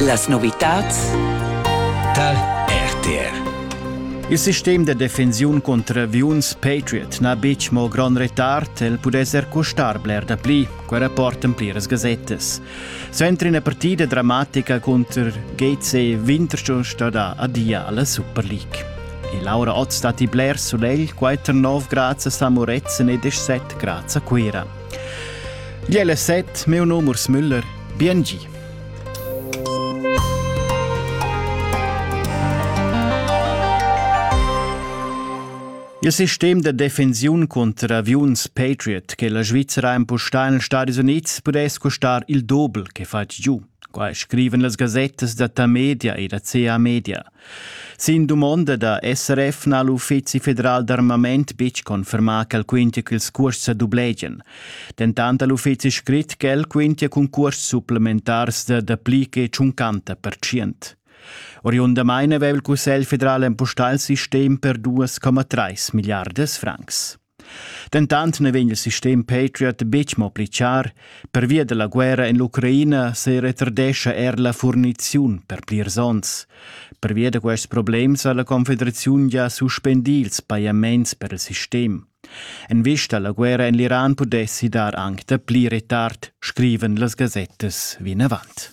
Las novitads tal RTR Il sistem de defensiun contro aviuns Patriot n'ha betg mo grond retard, el pudess er costar bler da pli, quei rapportan pliras gazettas. Suenter ina partida dramatica contro GC Winterthur stada adia alla Super League. E Laura Ott stat i bler sulegl, quai 9 grads a Samoretzen e 17 grads a Cuira. Gliella set, meu nom Urs Müller, biengi. Il sistem de defensiun contra aviuns Patriot che la Svizzera impostà negli Stati Uniti pudess costar il doble che fatg giù. Qua scriven las gazettas da ta media e da CA Media. Sin dumonda da SRF n'ha l'Uffizi federal d'armament betg confermà ch'el quintia ch'ils cuosts sa dublegian. Dentant ha l'uffizi scrit ch'el quintia cun cuosts supplementars da dapli che tschuncanta percient. Oriundamain aveva il Cussegl federal empustà il sistem per 2,3 milliardas francs. Dentant na vegn il sistem Patriot betg mo pli char, pervia da la guerra en l'Ucraina se retardescha er la furniziun per plirs onns. Pervia da quests problems ha la Confederaziun già suspendì ils pajaments per il sistem. En vista alla guerra en l'Iran pudessi dar anche da pli retard, scriven las gazettas vinavant.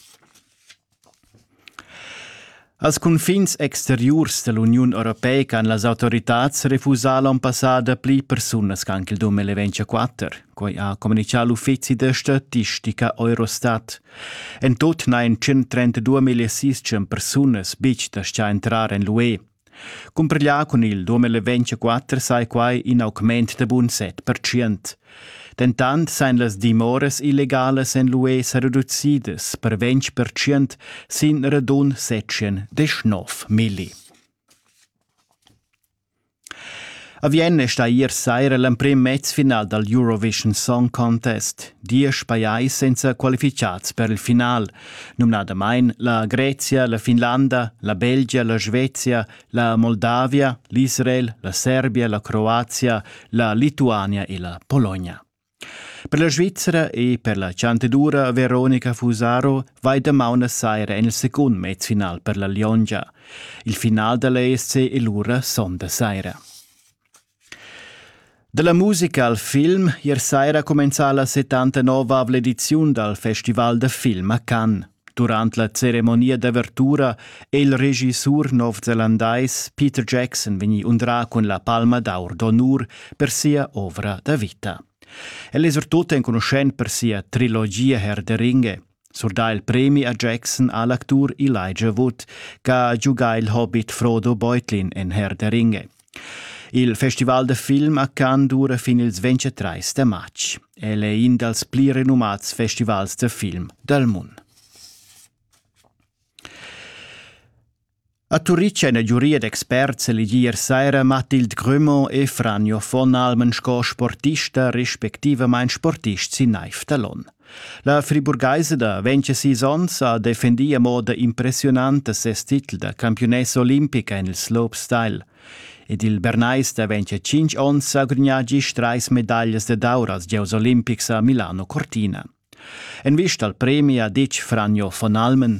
Als cunfins exteriurs dall'Uniun europeica han las autoritads refusà l'onn passà dapli persunas che anc il dum eleventscha 4. Quei ha communichà l'uffizi da statistica Eurostat. En tut n'hain 132.600 persunas betg da entrar en l'UE. Cumpriglià cun il 2024 sai quai in augment da bun 7%. Dentant sain las dimoras illegalas en l'UE sa reducidas per 20% sin radun 719 milli. A Vienna sta ier saira l'emprim mezfinal dal Eurovision Song Contest. Diesch pajais senza qualificads per il final – numnadamain la Grezia, la Finlanda, la Belgia, la Svezia, la Moldavia, l'Israel, la Serbia, la Croazia, la Lituania e la Polonia. Per la Svizzera e per la Chanteddura Veronica Fusaro vai damaun a saira en il secund mezfinal per la Liongia. Il final da l'ESC è lura sonda saira. Dalla musica al film ier saira cumenzà la 79 ediziun dal Festival da film a Cannes. Durant la ceremonia d'avertura è il regissur novzelandais Peter Jackson vegnì undrà cun la palma d'aur d'onur per sia ovra da vita. El è surtut enconuschent per sia trilogia Herr der Ringe. Surdà il premi a Jackson ha l'actur Elijah Wood ch'ha giugà il hobbit Frodo Beutlin en Herr der Ringe. Il festival da film a Cannes dura fin ils 23 da matg. El è in dals pli renumats festivals da film dal mund. A Turitg ein la giuria d'experts elegi ier saira Mathilde Grumont e Franjo von Almen sco sportista respectivamain sportist sin naiv da Lon. La friburgaisa da 26 onns ha defendì a moda impressiunanta ses titel da campiunessa olimpica en il slopestyle. Ed il Bernais da 25 onns ha gudagnà gist trais medaglias da d'aur als gieus olimpics a Milano Cortina. En vista al premi ha ditg Franjo von Almen.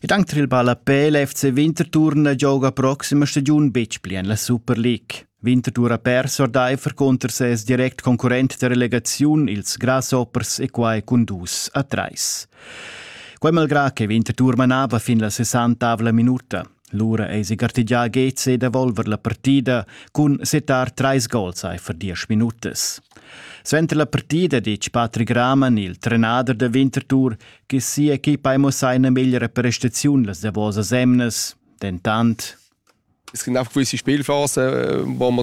Ed anche il ballapel FC Winterthur gioca prossima stagiun betg pli en la Super League. Winterthur ha perso ordaifer conter ses direct concurrent da relegaziun, ils Grasshoppers e quai cun dus a trais. Quai malgrà che Winterthur manava fin la 60 minuta. Lura eisi gartegià Geze da volver la partida cun setar trais gols aifer diesch minutas. Suenter la partida ditg Patrick Raman, il trenader da Winterthur, che sia equipa ha mussà ina meglra prestaziun las davosas emnas, dentant Es gibt einfach gewisse Spielphasen, wo man